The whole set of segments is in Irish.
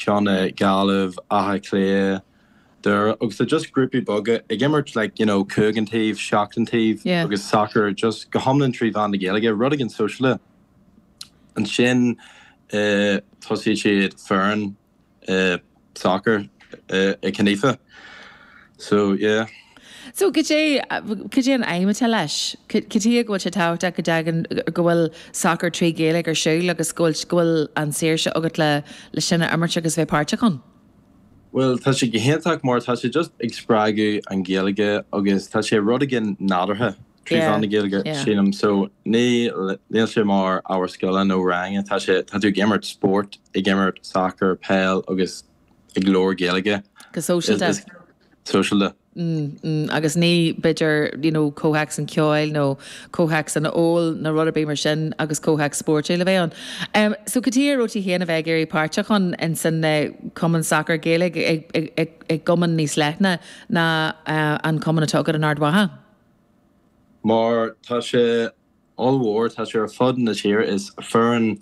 ceann i Gaillimh, Átha Cliath, Doire agus tá just grúpaí beaga ag imirt like you know cúig an taobh, seacht an taobh yeah. agus sacar just go hiomlán trí mheán na Gaeilge rud éigin sóisialta ansin uh, thosaigh siad foireann uh, sacar uh, i Conifa. So, yeah. So, cad é, cad é an aidhm atá leis? Cad chuige go bhfuil sé tábhachtach go dtagann, go bhfuil sacar trí Ghaeilge ar siúl agus go bhfuil, go bhfuil an tsaoirse agat le, le sin a imirt agus a bheith páirteach ann? Bhuel, tá sé go hiontach mar tá sé just ag spreagadh an Ghaeilge agus tá sé rud éigin nádúrtha trí Yeah, mheán na Gaeilge, yeah. sílim. So, ní, níl sé mar ábhar scoile nó rang, tá sé, tá tú ag imirt spórt, ag imirt sacar, peil agus. ag labhair Gaeilge. go sóisialta. Is sóisialta. agus ní b'fhéidir you know comhthéacs an cheoil nó comhthéacs an óil nó rud ar bith mar sin agus comhthéacs spóirtiúil a bheith ann. Em so cad chuige a raibh tú féin a bheith ag iarraidh páirteach ann in san eh cumann sacair Gaeilge i i i i gcumann níos leithne ná eh an cumann atá agat in Ard Mhacha? Mar tá sé ollmhór. Tá sé ar fud na tíre. Is foireann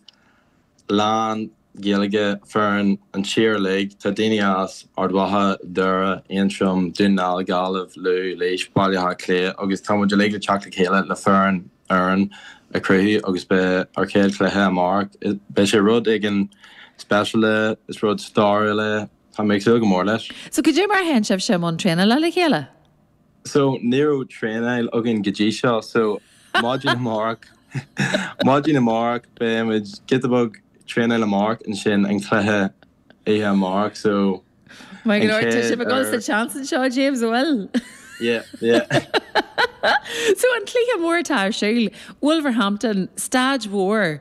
lán-Ghaeilge foireann an tír uilig. Tá daoine as Ard Mhacha, Doire, Aontroim, Dún na nGall, Gaillimh, Lú, Laois, Baile Átha Cliath agus tá muid uilig le teacht le chéile le foireann fhoireann a chruthú agus beidh ár chéad chluiche amárach, beidh sé rud éigin speisialta, is rud stairiúil é, tá mé ag súil go mór leis. So cad é mar a théann sibhse i mbun traenála le chéile? So ní raibh traenáil againn go dtí seo so maidin amárach maidin amárach beidh muid giota beag traenáil amárach ansin an cluiche oíche amárach so Mar go leor tá sibh ag gabháil sa chance anseo James an bhfuil? Yeah, yeah. So an cluiche mór atá ar siúl Wolverhampton, Staid Mhór.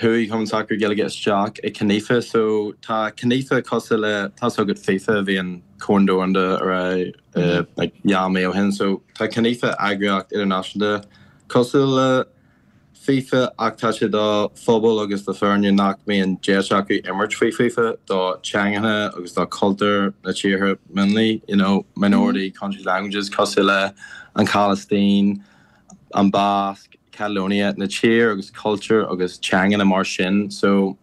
Chuaigh Cumann Sacair Gaeilge isteach i Conifa so tá Conifa cosúil le, tá's agat Fifa, bhí an Corn Domhanda ar aghaidh like dhá mí ó shin so tá Conifa eagraíocht idirnáisiúnta cosúil le Fifa ach tá sé do phobail agus do foirne nach mbíonn deis acu imirt faoi Fifa do theangacha agus do chultúir na tíortha mionlaigh you know minority countries languages cosúil le an Phalaistín an Basc, Catalonia, na tír agus cultúr agus teangeanna mar sin so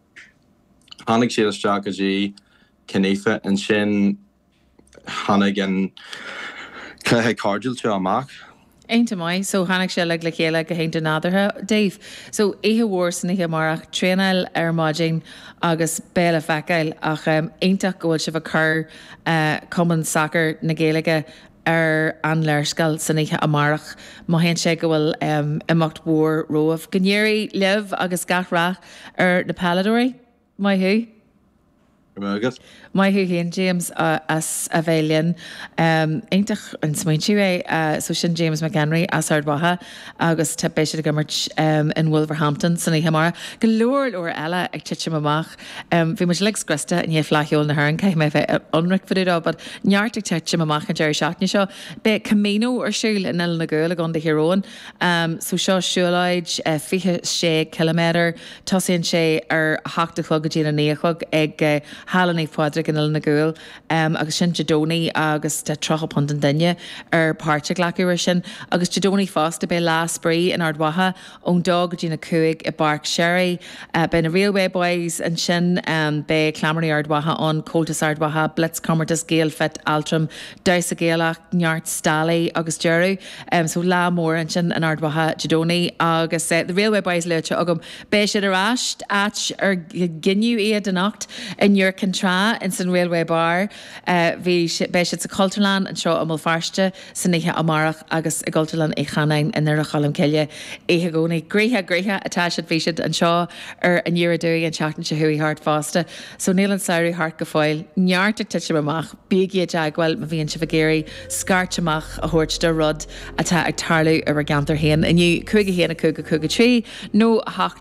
tháinig siad isteach go dtí Conifa ansin tháinig an cluiche cairdiúil seo amach. Iontach maith so tháinig sé uilig le chéile go hiontach nádúrtha daoibh, so oíche mhór san oíche amárach, traenáil ar maidin agus beidh le feiceáil ach iontach go bhfuil sibh ag cur cumann sacair na Gaeilge, ar an léarscáil san oíche amárach. Mothaíonn sé go bhfuil imeacht mhór romhaibh. Go n-éirí libh agus gach rath ar na peileadóirí. Maith thú. Go raibh maith agat. Maith thú féin, James, as a bheith linn. Iontach an smaointiú é. So sin James McHenry as Ard Mhacha agus beidh siad ag imirt in Wolverhampton san oíche amárach. Go leor leor eile ag titim amach. Bhí muid uilig scriosta i ndiaidh Fleadh Cheoil na hÉireann, caithfidh mé bheith ionraic fá dtaobh dó, but neart ag titim amach an deireadh seachtaine seo. Beidh Camino ar siúl in Oileán an Ghuail i gContae Thír Eoghain. So seo siúlóid 26 ciliméadar, tosaíonn sé ar a hocht a chlog go dtí an a naoi a chlog ag Halla Naomh Pádraig in Oileán an Ghuail agus sin Dé Domhnaigh agus tá £30 an duine ar páirt a ghlacadh ar sin. Agus Dé Domhnaigh fosta beidh Lá Spraoi in Ard Mhacha, ón dó go dtí na cúig i bPáirc Sherry. Beidh na Railway Boys ansin, beidh Cleamairí Ard Mhacha ann, Comhaltas Ard Mhacha, Blitz, comórtas Gael Fit, Altram, Damhsa Gaelach, neart stallaí agus deireadh. So lá mór ansin in Ard Mhacha Dé Domhnaigh agus The Railway Boys luaite agam. Beidh siad ar ais, áit ar gineadh iad, anocht in Iúr Cinn Trá insan Railway Bar. Beidh siad sa Chultúrlann anseo i mBéal Feirste san oíche amárach agus i gCultúrlann Uí Chanáin i nDoire Cholm Cille oíche Dhomhnaigh. Gnoitheach, gnoitheach atá siad, bhí siad anseo ar an Uair Aduaidh an tseachtain seo chuaigh thart fosta so níl an samhradh thart go fóill. Neart ag titim amach, bígí i dteagmháil má bhíonn sibh ag iarraidh scairt amach a thabhairt do rud atá ag tarlú i bhur gceantar féin inniu, 51 5 5 3 nó 8.